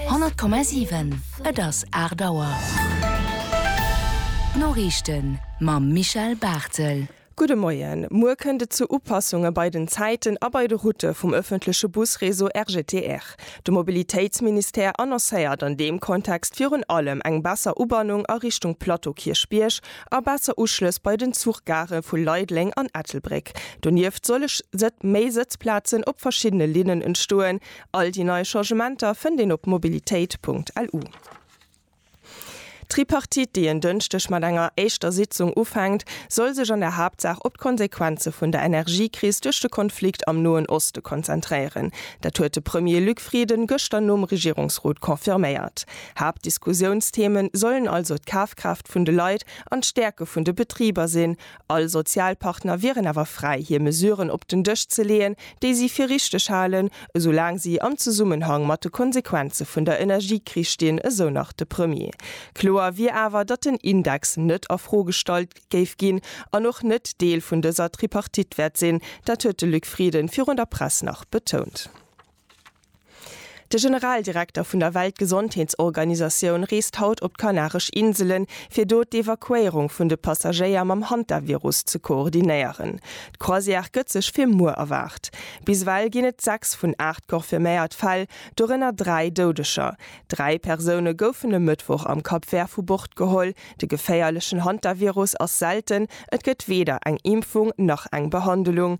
100,7 Et ass 8 Auer. D'Noriichten mam Michel Barthel. Gudde Moien. Muer kënnt et zu Upassunge bei den Zäiten a bei de Routë vum ëffentleche Busreseau RGTR. De Mobilitéitsministère annoncéiert an deem Kontext virun allem eng besser Ubannung a Richtung Plateau Kierchbierg, a besser Uschlëss bei den Zuchgare vu Leideleng an Ettelbréck. Donieft solle méi Sëtzplazen op verschiddene Linnen entstoen. All déi nei Changementer fënnt een op mobilitéit.lu. D'Tripartite, déi en Dënschdeg mat enger éischter Sitzung ufänkt, soll sech an der Haaptsaach op d'Konsequenze vun der Energiekris duerch de Konflikt am Noen Oste konzentréieren. Dat huet de Premier Luc Frieden gëschter nom Regierungsrot confirméiert. Haaptdiskussiounstheme sollen also d'Kafkraaft vun de Leit an d'Stäerke vun de Betriber sinn. All Sozialpartner wieren awer fräi hir Mesuren op den Dësch ze leeën, déi si fir richteg halen, esoulaang si am Zesummenhang mat de Konsequenze vun der Energiekris stinn, esou nach de Premier. Kloer wier awer, datt den Index net a Fro gestallt géif ginn an och net Deel vun dëser Tripartite wäert sinn. Dat huet de Luc Frieden virun der Press nach betount. De Generaldirekter vun der Weltgesondheetsorganisatioun reest haut op d'Kanaresch Inselen, fir do d'Evakuéierung vun de Passagéier mam Hantavirus ze koordinéieren. D'Croisière gëtt sech fir muer erwaart. Bis ewell ginn et 6 vun 8 confirméiert Fäll, dorënner 3 Doudeger. Dräi Persoune goufen e Mëttwoch am Cap Vert vu Bord geholl. De geféierlechen Hantavirus ass selten, et gëtt weder eng Impfung nach eng Behandelung.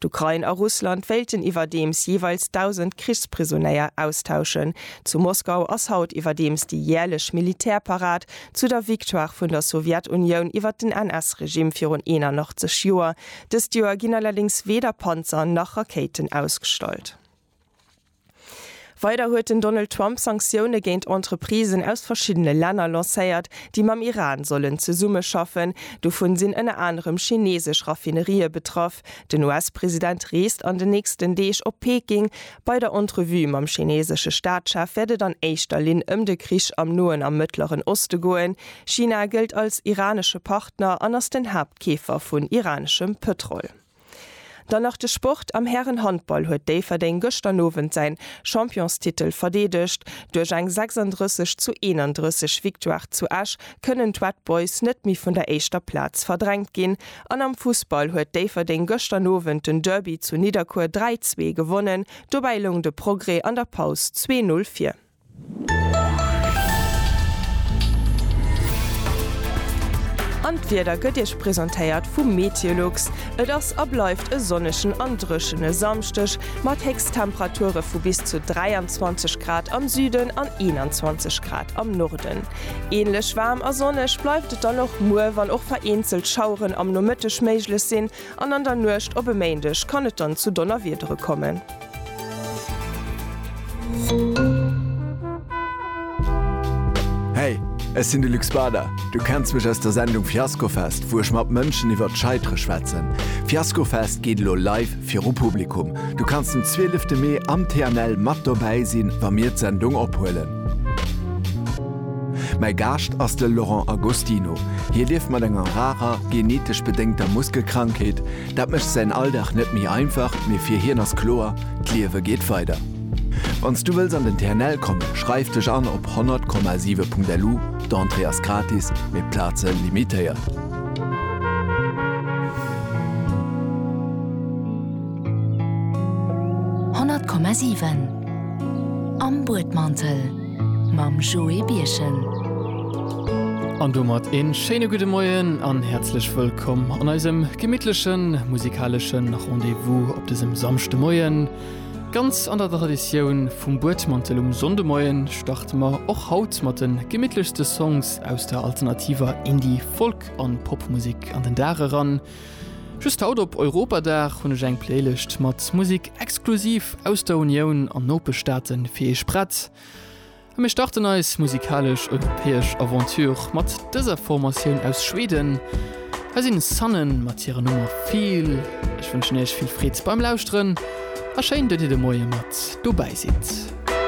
D'Ukrain a Russland wéilten iwwerdeems jeeweils 1.000 Krichsprisonéier austauschen. Zu Moskau ass haut iwwerdeems déi jäerlech Militärparad zu der Victoire vun der Sowjetunioun iwwer den NS-Regime virun 81 Joer. Dëst Joer ginn allerdéngs weder Panzer nach Rakéiten ausgestallt. Weider huet den Donald Trump Sanktioune géint Entreprisen aus verschiddene Länner lancéiert, déi mam Iran sollen zesummeschaffen. Dovun sinn ënner anerem chineesesch Raffinerië betraff. Den US-President reest an den nächsten Deeg op Peking. Bei der Entrevue mam chineesesche Staatschef wäert et an éischter Linn ëm de Krich am Noen a Mëttleren Oste goen. China gëllt als iranesche Partner an ass den Haaptkeefer vun iraneschem Pëtrol. Dann nach de Sport, Am Härenhandball huet Déifferdeng gëschter Owend säin Championstitel verdeedegt. Duerch eng 36 zu 31 Victoire zu Esch kënnen d'Red Boys net méi vun der éischter Plaz verdrängt ginn. An am Fussball huet Déifferdeng gëschter Owend den Derby zu Nidderkuer 3, 2 gewonnen. Dobäi loung de Progrès an der Paus zwee Null vir. An d'Wieder gëtt Iech presentéiert vu Meteolux. Et ass a bleift e sonnegen an dréchene Samschdeg mat Héchsttemperature vu bis zu 23 Grad am Süden an 21 Grad am Norden. Änlech waarm a sonneg bleift et dann och muer, wann och vereenzelt Schaueren am Nomëtteg méiglech sinn, An an der Nuecht op e Méindeg kann et dann zu Donnerwiedere kommen. Hey, ech sinn de Luc Bader. Du kenns mech aus der Sendung Fiaskofest, wou ech mat Mënschen iwwer d'Scheitere schwätzen. Fiaskofest geet elo live viru Publikum. Du kanns den 12 Mee am TNL mat dobäi sinn, wa mir d'Sendung ophuelen. Mäi Gaascht ass de Laurent Agostino. Hie lieft mat enger rarer, genetesch bedéngter Muskelkrankheet. Dat mécht säin Alldag net méi einfach, mee fir hien ass kloer, D'Liewe geet weider. Wann s du wëlls an den TNL kommen, schreif dech an op 100,7.lu, d'Entrée ass gratis, mee d'Plaze limitéiert. Am Buedmantel mam Joé Birchen. An domat een schéine gudde Moien an häerzlech wëllkomm an eisem gemittlechen musikaleschen Rendez-vous op desem Samschdemoien. Ganz an der Traditioun vum Buedmantel um Sonndemoien starte mer och haut mat den gemittlechste Songs aus der alternativer Indie-, Folk an Popmusik an den Dag eran. Just haut op Europadag hunn ech eng Playlëscht mat Musik exklusiv aus der Unioun an Nopeschstaaten fir iech prett. A mir starten eis musikalesch europäesch Aventure mat dëser Formatioun aus Schweden. Hei sinn Sunnen mat hirer Nummer Feel. Ech wënschen iech vill Freed beim Lauschteren a schéin dat dir de Moie mat dobäi sidd.